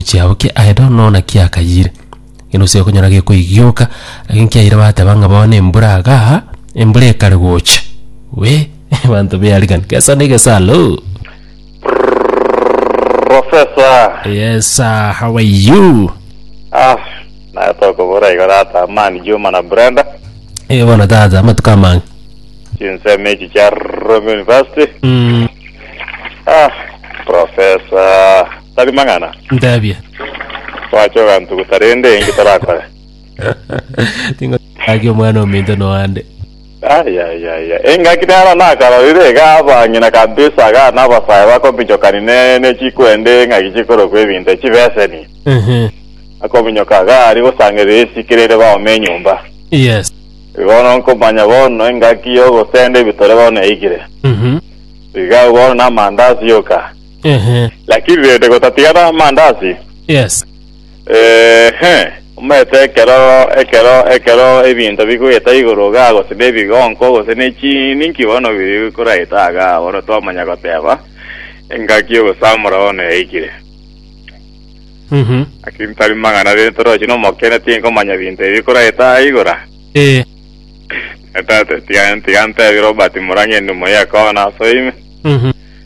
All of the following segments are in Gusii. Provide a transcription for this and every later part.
chiabo kia Aedomu nonya naki akayire, gena ose okonyora gekoigioka, lakini kiayire bateba ng'a bono embura igaa, embura ekare gocha. Wee, abanto bearigani, gesa na egesa aloo. Professor. Yes sir, how are you? Ah, naye tokobora igo tata Amani Juma na Brenda. Eh, bono tata, amatuko amang'e. Chinsemo echi chia Rome University. Mm. Ah, Professor. tari mang'ana. Ntebie. Twache ogantuguta rende enki torakore? Ting'o gaki omwana ominto noande. Ayayaya, engaki nero nakarorire iga abang'ina kabisa iga nabasae bakominyokani ne nechikwende eng'aki chikorokwa ebinto echibeseni. Ehe. Akominyoka iga aria gosangerera esike rere baome enyomba. Yes. Bono nkomanya bono engaki yogosenda ebitore bono yaigire. Mhm. Iga bono na amandasi yoka. Ehe. Lakini rende gotatigara amandasi, Yes. ehe, omanyete ekero ekero ekero ebinto bikoeta igoro iga gose na ebigonko gose na echiini inki bono biri koraeta iga bono twamanya goteba engaki y'ogosamora bono yaikire. Mhm. Lakini tari mang'ana rende torochi na omokene tinkomanya binto ebi bikoraeta aa igoro aa. Eh. Tata tiga tiga ntebie Robert Murang'a endimo y'ekoona ase ime. Mhm.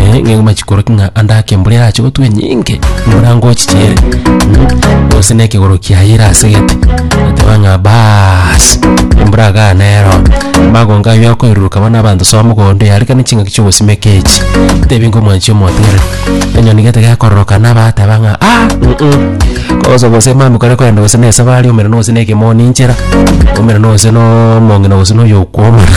eh, ng'engo machikoroki ng'a ande ake mbura erache gotwa enyinge mbura ngochichiere Mm, gose na ekegoro kiaye erasegete eteba ng'a baas embura iga nero magonga ayo akoiruruka bono abanto soa mogondo yarekana chingaki chiogosimeka echi tebi ngomwanchi omotere enyoni gete gekororoka naba ateba ng'a ah mm, mm. kogosa gose mami kore kwenda gose na esabari omera nogose na ekemoni inchera omera nogose no omong'ina gose na oyokwomana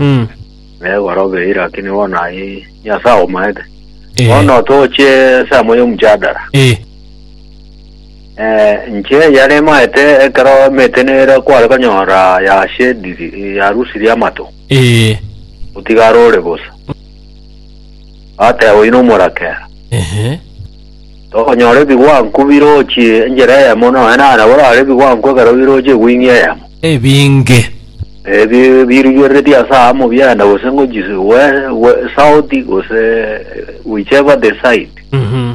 Mm. negorobe ira lakini bono aye nyasae aomaete Eh. bono toche esamo y'omchadara Eh. Eh, nche yare maete ekero emete nere kware konyora yashediri yarusirie amato Eh. otigarore bosa ate oino omorakera Ehe. Tokonyora ebigwanku birochie enchera eyemo, nonya na nabo rare ebigwanku ekero birochie egwing'ia eyemo. Ebinge. Ebi birigereretie ase aamo biaenda gose ngochi we- we- south gose whichever the side Mhm.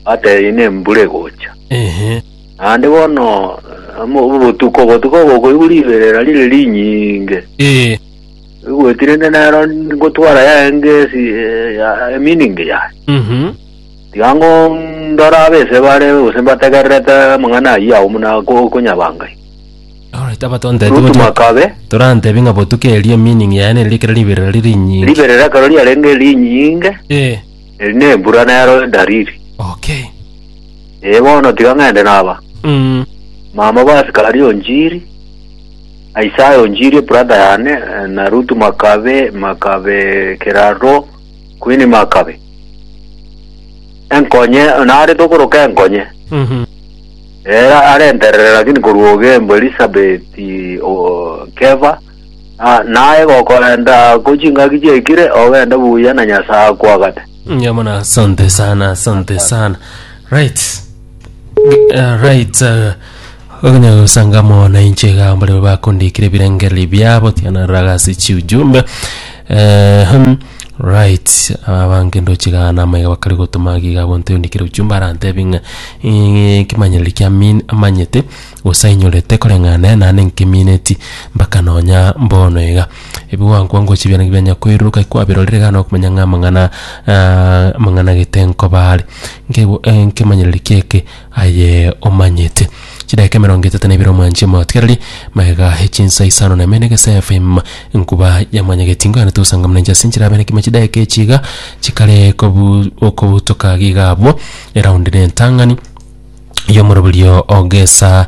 atebie na embura egocha Ehe. naende bono amo- obotuko obotuko ogokoigwa riberera rire rinyinge Ee. igweti rende nero ngotwara yaye ngesi eh, ya- eminingi yaye Mhm. Tiga ng'o ndore abese bare gose mbategererete amang'ana ayio agwo buna okonyabangai? Alright, abatonte Rutu tibotwa- makabe. torantebie ng'a botuko erio meaning yaye nere ekero riberera riri rinyinge. Riberera ekero riarenge rinyinge, Eh, eri na embura nero edariri. okay. Ee bono tiga ng'ende naba. Mm, Mama basikari onjiri, Isaya onjiri brother yane, eh, na Rutu Makabe, Makabe Keraro, Queen Makabe. Enkonye, narete okoroka enkonye. Ere arenterere lakini korwa ogembo Elisabeth o- keba ah, naye gokorenta ko chingaki chiekire ogende buya na Nyasaye akwagate. Yamana, asante sana, asante sana. Right. Uh, right. Uh, Ogonyara gosanga amo nainche igaa mbaria bakondikire ebirengererio biabo tiana raga ase chiujumbe Eh, hmm, right abange ndoche igaa namo iga bakare gotoma iga iga bonto yondikire ujumbe arantebi ng'a eh, ekemanyerero kia min amanyete gose ainyorete koreng'ana nane nkemineti mpaka nonya mbono iga ebiwango wango gochia ebiana bianya koiroka eki kwabirorire iga nokomenya ng'a amang'ana amang'ana gete nkoba are nkebu eh, nkemanyererio kiaeke. aye omanyete. Chidaeka emerongo etato na ibere omwanche motigererie, magega e chinsa isano na ime na egesa efeim, enkuba ya mwanya getingo yane tosanga muna inche ase enchera abe nekimo chidaeka echi iga chikare kobu okobutoka iga abwo, eraundi na entang'ani y'omoroberio o gesa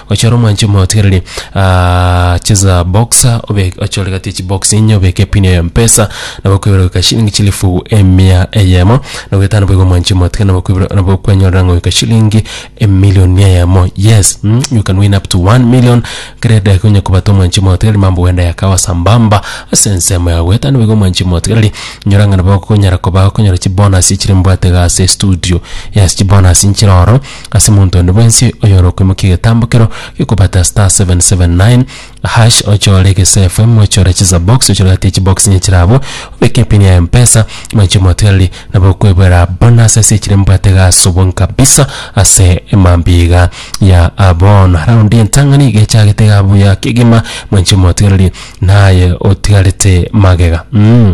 Ochore omwanchi omotigereri aa cheza box obe ochore gati echi box enye obeke pin ya mpesa nabo okoibera goika shilingi chilifu emia eyemo na goetano boigo omwanchi omotiga nabo okoibera nabo okwenyorera ngoika shilingi emillion eyemo yes mm you can win up to 1 million kera edageka onye kobata omwanchi omotigereri mambo genda yakawa sambamba ase ensemo yago goetano boigo omwanchi omotigereri nyora ng'a nabo okonyara koba okonyora chibonus echire mbwate iga ase estudio yes chibonus nchire oro. ase omonto onde bwensi oyorokoimokia egetambo keroo gekobata *779# ochore egese FM ochore chisabox ochore gati ya chibox onye chire abwo obeke epin ya mpesa mwanche omotereri nabo okoebera bonus ase echire mbwate gasobwa kabisa ase emambia iga ya bono raundi entang'ani iga echagete iga buya kegima mwanche omotigereri naye otigarete magega mh.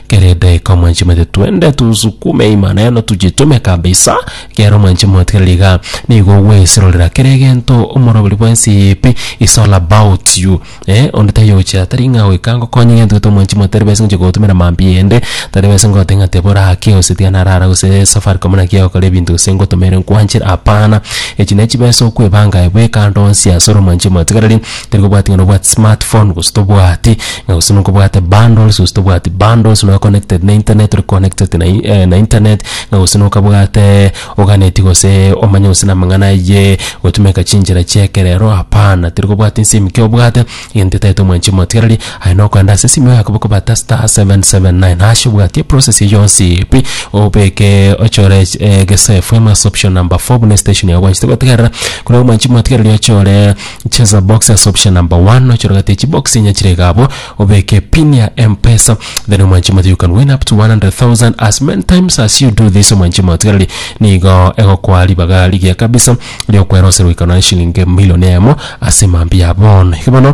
Kera edaika mwanche omanyete twende tunsukume Imaneno tujitume kabisa kera omwanche motigereria iga nigo ogwesirorera kera egento omoroberi bwensi eye pi is all about you eh onde taiyo ogochia tari ng'a goika ngokonye egento gete omwanchi moyo tari bwesi ngochia gogotumera mambia ende tari bwesi ngoteba ng'a teba orake gose tiga narara gose Safaricom naki egokora ebinto gose ngotomeire nkwanchire hapana echi ne chibesa okwebanga aye bweka ande onsi asore omwanchi omotigereria. Tari kobwati ng'a nobwate smart phone gose tobwati, ng'a gose nkobwate bundles gose tobwati bundles, noe connected na internet ore connected na i- na internet, ng'a gose nokabwate oganeti gose omanye gose na amang'ana ayie gotumeka chinchera chia ekerero, hapana. Tari kobwati nse ime ekio obwate, egento etaete omwanchi omotigereri, aye nokoenda ase esimo yaye kobata star seven seven nine hash obwati eprocess eyio yonsi pi, obeke ochore ech- egesafe amo ase option number four buna estation yao gwanchete gotegerera, korende omwanchi omotigereri ochore. Cheza box as option number one ochorogete echi box inya chire iga abwo obeke pin ya mpesa then omwanchi moto you can win up to 100,000 as many times as you do this omwanchi motigareri nigo egokoa ribaga rigiya kabisa riokwera ose goika nonya shillingi million emo ase mambia bono iga bono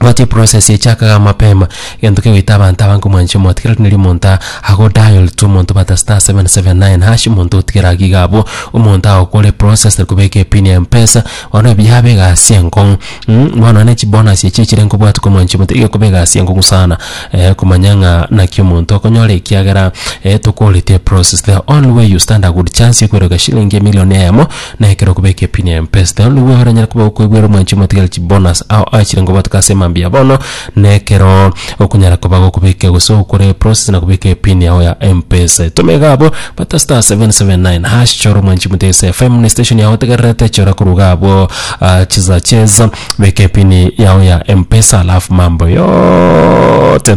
Omanyete eprocess echakaga mapema, egento kegoita abanto abange komwancha omote kera rirorio omonto aa ago dial to omonto obwate star seven seven nine hash omonto otigere iga iga abwo, omonto agokore eprocess tari kobeka epini ya mpesa, bono ebi yaba egasi enkong'u mh, bono nonya chibonus echi echire nkobwate komwancha omote, iga ekoba egasi enkong'u sana komanya ng'a naki omonto okonyora ekiagera tokoreti eprocess, the only way you stand a good chance yokoira gochia shilingi emilion eyemo. Na ekero okobeka epine ya empesta, onigwe oranyare koba okoibwera omwanchi omotigari chibonus ao achire ngo batuke ase emambia ya bono, na ekero okonyara koba gokobeka gose okore process na kobeka epin yao ya empesa. Etoma iga abwo, bata star seven seven nine hash chora omwanchi omotigari ase FM na estation yao otegererete, chora korwa iga abwo ah, chisa chesa, beka epin yao ya empesa alafu mambo yote.